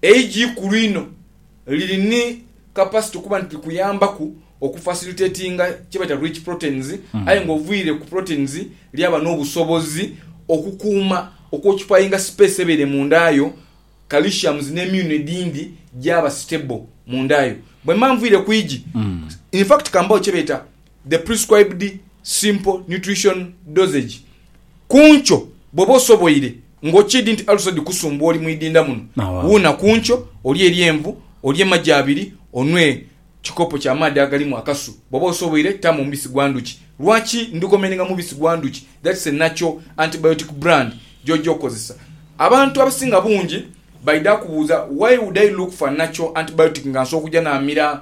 Eigi ikulu inho liri ni kapasito kuba nti likuyambaku okufasilitetinga kyebaita rich proteins aye nga oviire ku proteins lyaba n'obusobozi okukuuma okwokipayinga sipeesi ebaire munda yo, calciums n'emyuno edhindi gyaba sitebo munda yo. Bwemba nviire ku igi, in fact kambagho kyebeeta. the prescribed simple nutrition dosage ku nkyo bwoba osoboire nga okiidi nti alusa dhikusumbuwa oli mu idinda muno Awaa. wuuna ku nkyo olye eryenvu olye magi abiri onwe ekikopo kya maadhi agalimu akasu bwoba osoboire taamu omubisi gwa ndhuki lwaki ndhikomendinga mubisi gwa ndhuki that's a natural antibiotic brand gyojja okozesa abantu abasinga bungi baidha kubuuza why would I look for a natural antibiotic nga nsobola okugya namira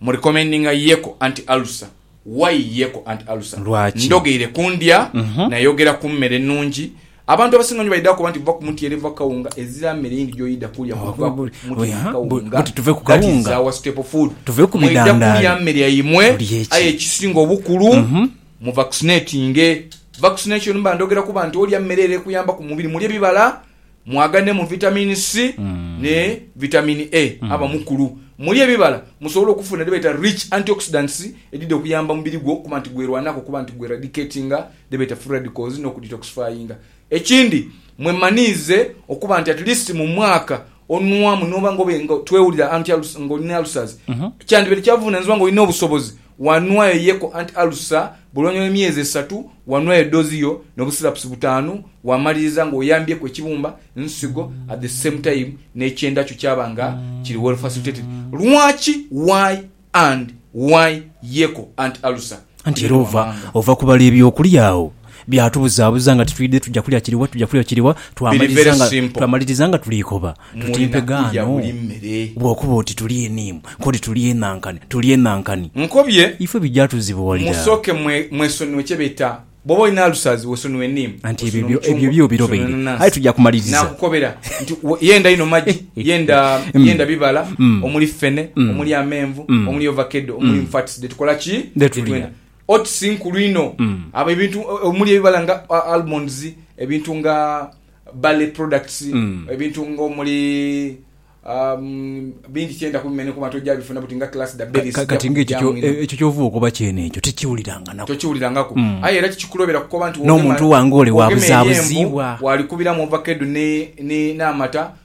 Mu recommendinga Yeko anti ulcer, why Yeko anti ulcer? Lwaki? Ndogeire ku ndya, nayogera ku mmere ennungi. Abantu abasinga onyo baidha kukoba nti va ku mutyeere, va ku kawunga. Ezira mmere yindi gy'oidha kulya kuva ku mutyeere ni kawunga. That is our staple food. Mwidha kulya mmere yaimwe, aye ekisinga obukulu mu vaccinatinge. Vaccination mba ndhogeraku bantu olya mmere ere ekuyambaku mu mubiri. Mulye bibala. Mwaganemu Vitamin C ni Vitamin A aba mukulu. Mulye ebibala musobole okufuna dhebeeta rich antioxidants edhidha okuyamba omubiri gwo okuba nti gwerwanaku okuba nti gweradicatinga dhebeeta free radicals n'okudetoxifyinga. Ekindi mwemaniize okuba nti at least mu mwaka onwamu noba nga obe nga twewulira anti nga olina ulcers kyandibaire kyavunanizibwa nga olina obusobozi Wanwayo ye ku anti alusa bwe luvannyuma lw'emyezi esatu, wanwayo doozi yo no busirapusi butaanu, wamaliriza nga oyambyeku ekibumba, nsigo, at the same time n'ekyenda kyo kyaba nga kiri well facilitated. Lwaki, why and why ye ku anti alusa? Anti era ova, ova kubala eby'okulya agho byatubuzabuza nga titwidhe tuja kulya kiriwa, tuja kulya kiriwa, Biri twamaliriza very nga, simple. twamaliriza nga tuli ikoba. Tutimpe gaano bw'okuba oti tuli eniimu, k'oti tuli enankani, tuli enankani. Nkobye. Ifwe bigya tuzibuwalira. Musooke mwesonue kye beta, bw'oba olina alusazi, wesonue eniimu, Anti ebyo, wesonue ebyo, ebyo omucungwa, byo obirobaire. wesonue Aye enanansi. tuja kumaliriza. Naakukobera nti yenda inho magi, yenda, yenda bibala omuli ffene, omuli amenvu, omuli ovakedo, omuli nfats dhe tukola ki? Dhe Dhe tulya. twenda. Oats nkulu inho. Abo ebintu omuli ebibala nga almonds, ebintu nga. Barley products, ebintu nga omuli um, bingi kyenda kubimenya kuba nti ojja bifuna buti nga class da berries. Ka, kati nga ekyo kyo e, ekyo kyova okoba kyene ekyo tikiwuliranganako. Tokiwulirangaku. Mm. Aye era kikikuloobera kukoba nti wogema, N'omuntu wange ole wa wogema eri envu, buzaabuziibwa. waalikubiramu ovakedo ne, ne, n'amata,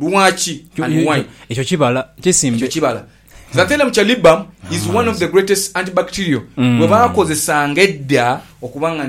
Lwaki and why? Ekyo kibala kisimbe. Ekyo kibala. Xanthellum chalybum is one of the greatest antibacterial gwe baakozesanga edda okuba nga nti.